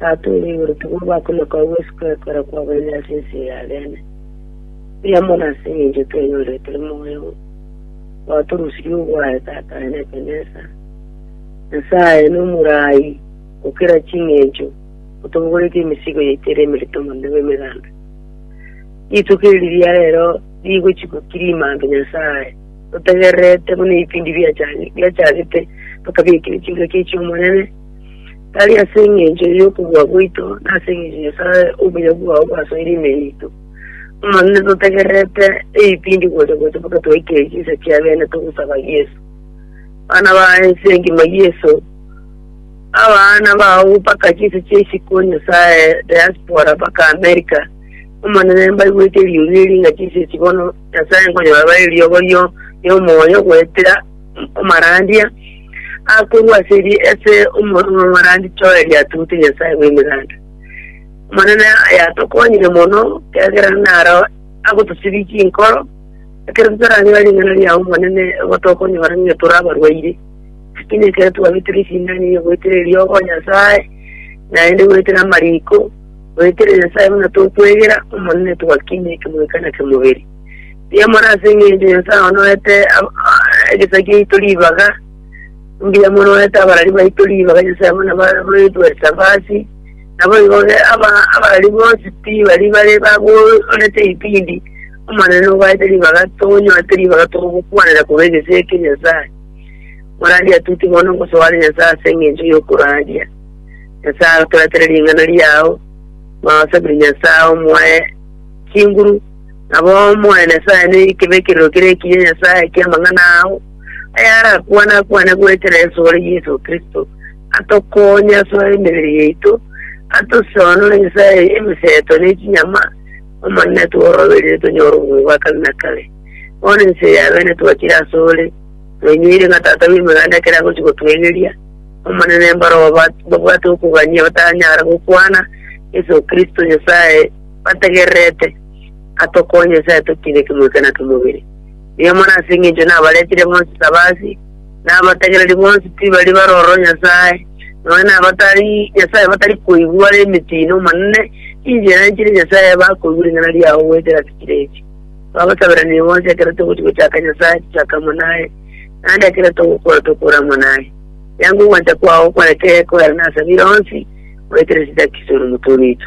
Tata ore igoro, togorwa oko na koigwa ase okwegwekora kwabaino ase ense eye abeene, mbuya mono ase engencho twenyorire tore moyo oo, gwatorusirie ogwaye, Tata aye nekenesa, Nyasaye nomoraai gokera chingencho, otobogoretie emesigo yaito ere emerito mono nigo emegambe. Rituko eri riria rero rigochikwa kirimambe, Nyasaye, totegererete buna ebipindi biachagete, tokabiekire chingaki echi'Omonene, tari ase engencho y'okobua gwaito, na ase engencho Nyasae obuya bwao bwasoire ime yaito. Amanene totegererete ebipindi gocha gocha mpaka twaikire chinsa chia beene togosaba Yeso. Bana ba ense engima Yeso, abaana bao mpaka chinsa chia isiko Nyasae, diaspora mpaka America, Omonene mbaigwete riuria eri ng'a chinsa echi bono Nyasae nkonyora bare riogorio riomoyo goetera omorandia akorua ase eri ase omorandia toeri atute Nyasae bw'emeganda. Omonene yatokonyire mono, kiagera naro agotosibia chinkoro, ekero totaranyora ring'ana riao Omonene, nigo tokonyora ng'a tore abarwaire. Lakini ekero twabeterwa esindano eye goetera eriogo Nyasae, naende goetera amariko, goetera Nyasae buna tokwegera, Omonene twakinia ekemweka na kemobere. Mbiamore ase engencho Nyasae onoete egesaku giaito ribaga, mbuya monoete abarari baito ribaga Nyasae buna baroetwe Sabasi, nabo igo abarari bonsi pi bari bare bagorete ibindi, Omonene obaete ribaga tonyoete ribaga togokwanera korwa egesaku ekia Nyasae. Morandi atuti bono ngosoare Nyasae ase engencho yokoraria. Nyasae agotoretere ring'ana riao, Mwaosabiri Nyasae omoe chinguru, Nabo Omonene Nyasae noike b'ekerero keria ekiya Nyasae ki'amang'ana ao, ayarakwane-akwane goetera esore Yeso Kristo, atokoonye ase emebere yaito, atosionore Nyasae emeseto ne chinyama, Omonene tworobererie tonyore obobe bwa kare na kare. Bono ense ya beene twachire asore, twenyoire ng'a tata bw'emeganda ekero agochia gotwegeria, Omonene mbarabwo babwate okogania batanyara gokwana, Yeso Kristo Nyasae, bategererete, atokoe Nyasae totiine kemwika na kemobere. Nigo mono ase engencho nabaretire bonsi Sabasi, na abategereri bonsi tibari baroro Nyasae, nonya na abatari Nyasae batari koigwa are emetiino, Omonene, inche nanchire Nyasae bakoigwa ring'ana riao goetera sikire echi. Twabasaberanire bonsi ekero togochia gochaka Nyasae tochake amo naye, naende ekero togokora tokore amo naye. Yango ogwancha kwao kwane kegokoerana ase abire onsi, goetera esitakiso na omotwe oito.